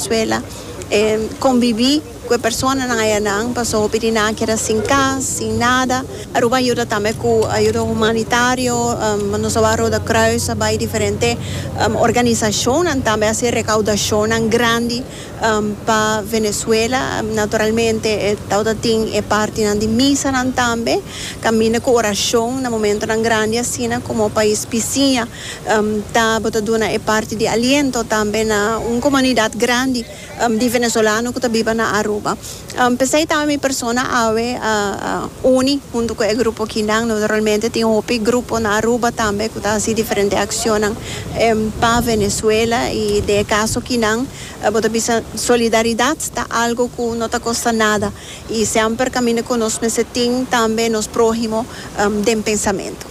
Venezuela e convivi cu e personanan ayanan pasobra hopi di nan a keda sin cas, sin nada. Aruba a yuda tambe cu ayuda humanitario, nos a wak Rode Kruis a bay diferente organisacionnan tambe a haci recaudacionnan grandi pa Venezuela, naturalmente e tabata tin e partinan di misanan tambe caminda cu oracion na momentonan grandi asina como pais bisiña. Ta bo ta duna e parti di aliento tambe na un comunidad grandi di venezolano cu ta biba na Aruba. P'esey tambe mi persona awe a uni hunto cu e grupo kinan. Naturalmente tin hopi grupo na Aruba tambe cu ta haci diferente accionnan pa Venezuela y den e caso kinan bo ta bisa solidaridad ta algo cu no ta costa nada y semper caminda cu nos mester tin tambe nos prohimo den pensamento.